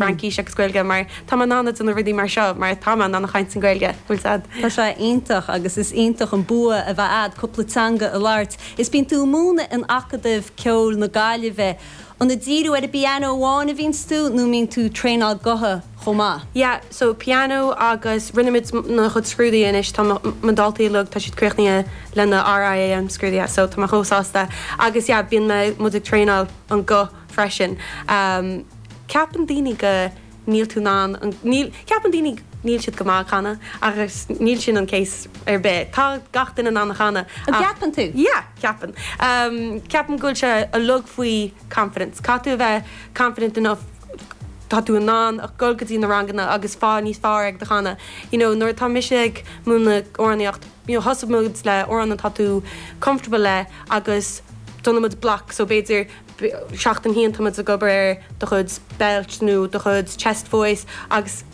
Fraincís agus Gaeilge mar tá mé in ann déanamh rudaí mar seo mar tá mé in ann a chaint in Gaeilge. Bhfuil a fhios a'd? Tá sé iontach agus is iontach an bua a bheith a'd cúpla teanga a labhairt is bíonn tú a' múineadh in Acadamh Ceoil na Gaillimhe. An a' díriú ar an bpiano amháin a bhíonns tú nó mbíonn tú traenáil gutha chomh maith? Yeah, so piano agus rinne muid na chuid scrúdaithe anois, tá mo daltaí uilig, tá siad críochnaithe le na RIAM scrúdaithe so tá mé chomh sásta agus yeah bíonn mé, muid ag traenáil an guth freisin. Ceapann daoine go níl tú in ann an, níl, ceapann daoine níl siad go maith ag canadh ach níl sin an case ar bith, tá gach duine in ann a chanadh ach. An gceapann tú? Yeah, ceapann. Ceapaim go bhfuil sé uilig faoi confidence, caithfidh tú a bheith confident enough tá tú in ann ach dul go dtí na ranganna agus fáil níos fearr ag do chanadh. You know, nuair atá mise ag múineadh amhránaíocht, you know, tosaíonn muid le amhrán atá tú comfortable le agus déanann muid block so b'fhéidir, Bhí seachtain a haon tá muid ag obair ar do chuid belt nó do chuid chest voice agus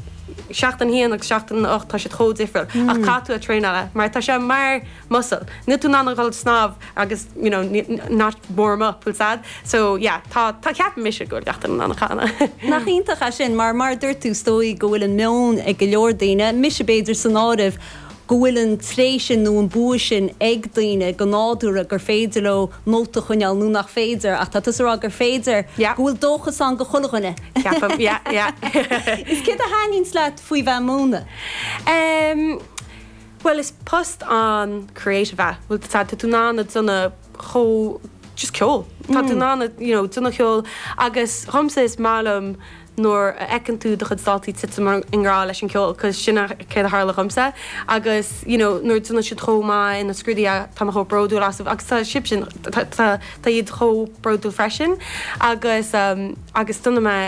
seachtain a haon agus seachtain a hocht tá siad chomh difriúil ach caithfidh tú a traenáil mar tá sé mar muscle. Níl tú in ann a dhul ag snámh agus you know not warm up full stop. So yeah tá tá ceapaim mise go bhfuil gach duine in ann a chanadh. Nach iontach é sin mar mar a dúirt tú is dóigh go bhfuil an meon ag go leor daoine, mise b'fhéidir san áireamh, go bhfuil an tréith sin nó an bua sin ag daoine go nádúrtha gur féidir leo nóta a choinneáil nó nach féidir, ach tá tusa ag rá gur féidir, go bhfuil dóchas ann do chuile dhuine. Ceapaim, yeah, yeah. Is céard a thaitníonns leat faoi bheith ag múineadh? Em, bhuel, is post an-creative é. Bhuel, tá tú in ann a déanamh chomh, just ceol, tá tú in ann, you know, déanamh ceoil agus dhomsa is maith liom nuair a fheiceann tú do chuid daltaí titim i ngrá leis an gceol, cause sin é céard a tharla dhomsa agus you know nuair a déanann siad chomh maith ina scrúduithe tá mé chomh bródúil asaibh agus tá sibsean, tá tá iad chomh bródúil freisin agus ehm agus déanann mé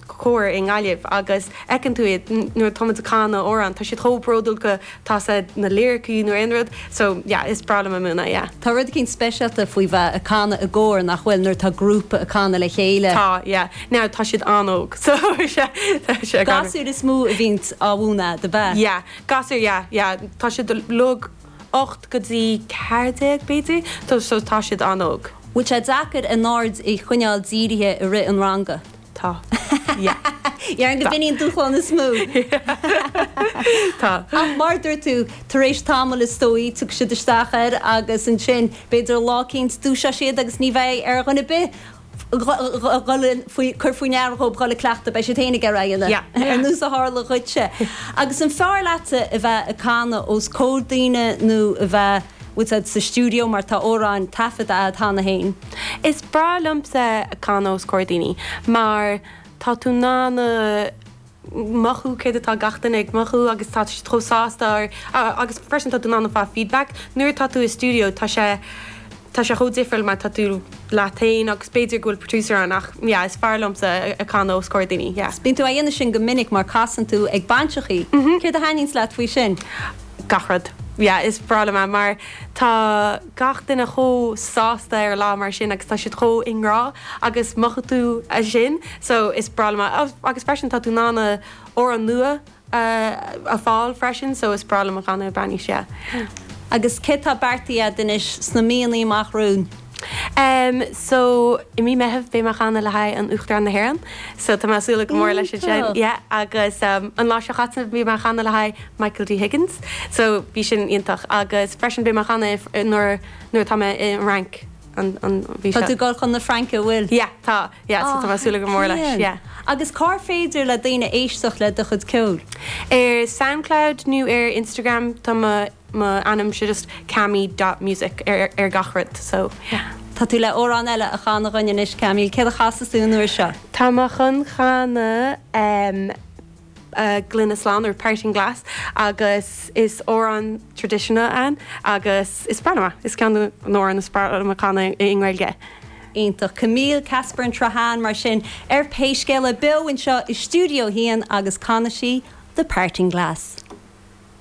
cóir i nGaillimh agus fheiceann tú iad nuair atá muid a canadh amhrán tá siad chomh bródúil go Tá siad, na liricí nó aon rud, so yeah, is breá liom a múineadh, yeah. Tá rud eicínt speisialta faoi bheith ag canadh i gcór, nach bhfuil, nuair atá grúpa ag canadh le chéile? Tá, yeah. Now, tá siad an-óg, so sea. Gasúir is mó a bhíonns á múineadh, ab ea? Yeah, gasúir, yeah, yeah. Tá siad uilig ocht go dtí ceathair déag, b'fhéidir, so tá siad an-óg. Bhfuil sé deacair a n-aird a choinneáil dírithe i rith an ranga? Tá. Yeah. Déarfainn gurb in é an dúshlán is mó! Yeah. Tá. Ach mar a dúirt tú, tar éis tamaill is dóigh tiocfaidh siad isteach air agus ansin b'fhéidir lá eicínt dúiseoidh siad agus ní bheidh ar dhuine ar bith dhul faoi, cur faoi ndeara dhóibh dhul ag cleachtadh, beidh siad féin ag iarraidh a dhéanamh. Yeah, yeah. Ar nós a tharla dhuitse. Agus an fearr leatsa a bheith ag canadh os comhair daoine nó a bheith. úsáid sa stiúideo mar tá amhráin taifeadta a'd cheana féin. Is breá liomsa canadh os comhair daoine mar tá tú in ann a mhothú céard atá gach duine ag mothú agus tá siad chomh sásta agus freisin tá tú in ann a fháil feedback. Nuair atá tú i stiúideo tá sé tá sé chomh difriúil mar tá tú leat féin agus b'fhéidir go bhfuil producer ann ach yeah is fearr liomsa a' canadh os comhair daoine yeah. Déanann tú a dhéanamh sin go minic mar casann tú ag bainseachaí, céard a thaitníonns leat faoi sin? gach rud. Yeah, is breá liom é mar tá gach duine chomh sásta ar lá mar sin agus tá siad chomh i ngrá agus mothaíonn tú é sin so is breá liom é. Agus freisin tá tú in ann amhrán nua a fháil freisin so is breá liom canadh ag bainis, yeah. Agus céard tá beartaithe agat anois sna míonnaí amach romhainn? Em so i mí Meitheamh beidh mé a' chanadh le haghaidh an Uachtarán na hÉireann so tá mé a' súil go mór leis an sin Iontach! yeah agus em an Luan seo chaite bhí mé a' chanadh le haghaidh Michael D Higgins so bhí sin iontach agus freisin beidh mé a' chanadh i fr- nuair nuair atá mé i an Fhrainc an an mhí Tá seo. tú ag dul chun na Fraince a' bhfuil? yeah tá yeah so tá mé a' súil go mór leis yeah. Agus cár féidir le daoine éisteacht le do chuid ceoil? Ar Soundcloud nó ar Instagram tá mo. mo ainm is just Cami dot music ar ar gach rud so yeah. Tá tú le amhrán eile a chanadh dhuinn anois Camille, céard a chasas tú an uair seo? Tá mé chun chanadh ehm Gloine Slán nó Parting Glass agus is amhrán traditional é agus is breá liom é, is ceann de na amhráin is fearr liom a chanadh i nGaeilge. Iontach. Camille, Casper and Trahan mar sin ar Pé Scéal é beo anseo i Stiúideo 1 agus canfaidh sí The Parting Glass.